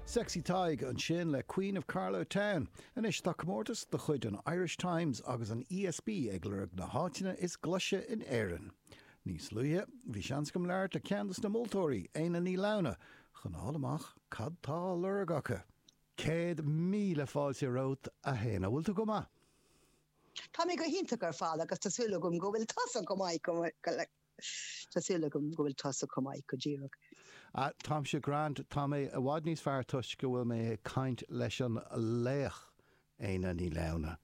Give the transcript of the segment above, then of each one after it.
Sexy Tadhg ansin le Queen of Carlow Town. Anois tá comórtas de chuid an Irish Times agus an ESB ag lorg na háiteanna is glaise in Éirinn. Níos luaithe bhí seans agam labhairt le ceann dos na moltóirí, Éanna Ní Lamhna, chun a fháil amach cad tá á lorg acu. Céad míle fáilte romhat, a Éanna. Bhfuil tú go maith? Tá mé go hiontach ar fad agus tá súil agam go bhfuil tusa chomh maith. Tá súil agam go bhfuil tusa chomh maith go díreach. Ah, táimse grand, tá mé i bhfad níos fearr toisc go bhfuil mé ag caint leis an laoch, Éanna Ní Lamhna.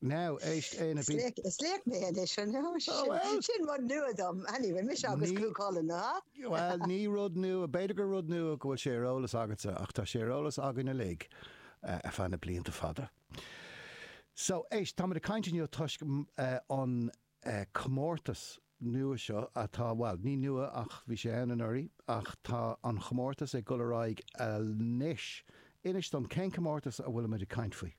Now, éist, Éanna, bí. Is laoch mé anois, an ea? Sin rud nua dom. Anyway, mise agus Cú Chulainn, an ea? Bhuel, ní rud nua, b'fhéidir gur rud nua go bhfuil sé ar eolas agatsa, ach tá sé ar eolas againn uilig ar feadh na blianta fada. So, éist, táimid ag caint inniu toisc an comórtas nua seo atá, bhuel, ní nua ach bhí sé ann anuraidh ach tá an chomórtas ag dul ar aghaidh anois. Inis dom, cén comórtas a bhfuilimid ag caint faoi?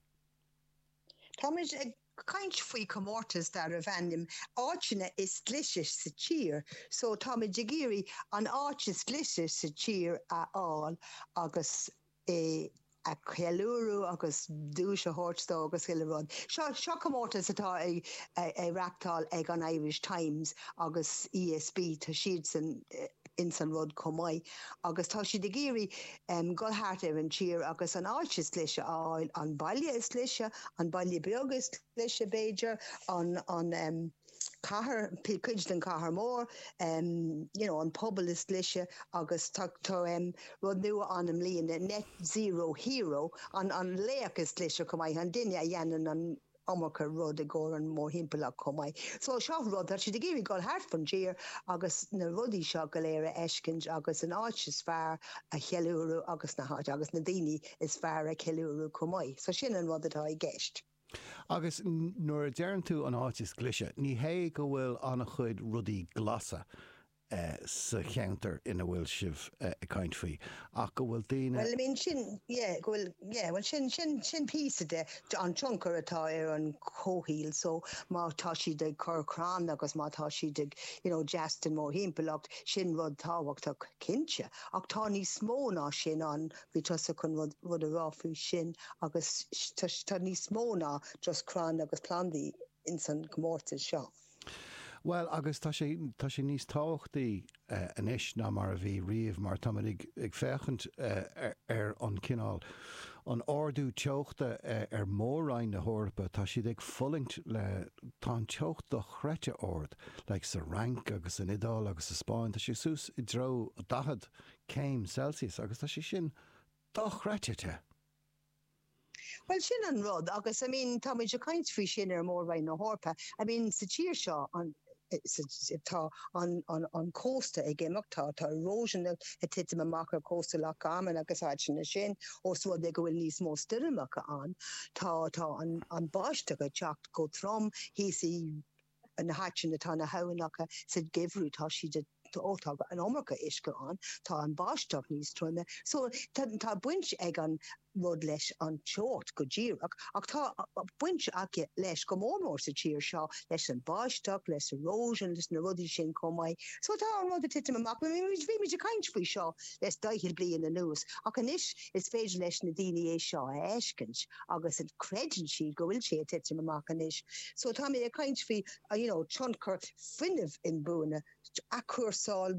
Táimid ag caint faoi chomórtas darbh ainm 'Áiteanna is Glaise sa Tír'. So, táimid ag iarraidh an áit is glaise sa tír a fháil agus. é a cheiliúradh agus duais a thabhairt dó agus chuile rud. Seo, seo comórtas atá á reáchtáil ag an Irish Times agus ESB, tá siadsan ins an rud chomh maith agus tá siad ag iarraidh dhul thart ar an tír agus an áit is glaise a fháil, an baile is glaise, an baile beag is glaise b'fhéidir, an, an. cathair, cuid den chathair mór, you know an pobal is glaise agus tá rud nua ann i mbliana, net zero hero, an laoch is glaise chomh maith, an duine a dhéanann an iomarca rud i gcomhair an mórthimpeallacht chomh maith. So seo rud, tá siad ag iarraidh dul thart fán tír agus na rudaí seo go léir a fheiscint agus an áit is fearr a cheiliúradh agus na háit agus na daoine is fearr a cheiliúradh chomh maith. So sin an rud atá i gceist. Agus nuair a deireann tú an áit is glaise, ní hé go bhfuil an-chuid rudaí glasa sa cheantar ina bhfuil sibh ag caint faoi, ach go bhfuil daoine. Bhuel, I mean, sin, yeah, go bhfuil, yeah, bhuel, sin, sin, sin píosa de, an tionchar atá ar an chomhshaoil, so, má tá siad ag cur crann agus má tá siad ag, you know, deas don mórthimpeallacht, sin rud tábhachtach, cinnte, ach tá níos mó ná sin ann, Bhí tusa chun rud a rá faoi sin agus tá níos mó ná just crainn agus plandaí ins an chomórtas seo. Bhuel agus tá sé, tá sé níos tábhachtaí anois ná mar a bhí riamh mar táimid ag féachaint ar an chineál, an ardú teochta ar Mhór-roinn na hEorpa, tá siad ag fulaingt le, tá an teocht dochreidte ard like sa Fhrainc agus san Iodáil agus sa Spáinn, tá sé suas i dtreo 40 céim Celsius agus tá sé sin dochreidte te! Bhuel, sin an rud agus I mean táimid ag caint faoi sin ar Mhór-Roinn na hEorpa, I mean sa tír seo an, tá an cósta ag imeacht, tá tá erosion ag titim amach ar chósta Loch Garman agus áiteanna sin os rud é go bhfuil níos mó stoirmeacha ann, tá tá an báisteach ag teacht chomh trom thíos i n-áiteanna tá na haibhneacha sa geimhreadh tá siad tá an iomarca uisce ann tá an báisteach níos troime so tá baint ag an rud leis an teocht go díreach ach tá baint aige leis go mór mór sa tír seo leis an báisteach leis erosion leis na rudaí sin chomh maith so tá an rud ag titim amach bhí muid ag caint faoi seo le daichead bliain anuas ach anois Is féidir leis na daoine é seo a fheiscint agus creideann siad go bhfuil sé ag titim amach anois. So táimid ag caint faoi you know tionchar fuinnimh inbhuaine, athchúrsáil,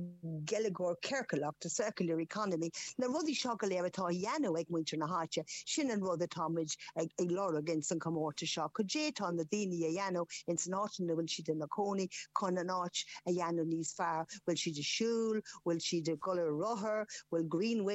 geilleagar ciorcalach, the circular economy, na rudaí seo go léir atá á dhéanamh ag muintir na háite, sin an rud atáimid ag lorg ins an comórtas seo, cad é atá na daoine a dhéanamh ins an áit ina bhfuil siad ina cónaí chun an áit a dhéanamh níos fearr, bhfuil siad ag siúl, bhfuil siad ag dul ar rothar, bhfuil green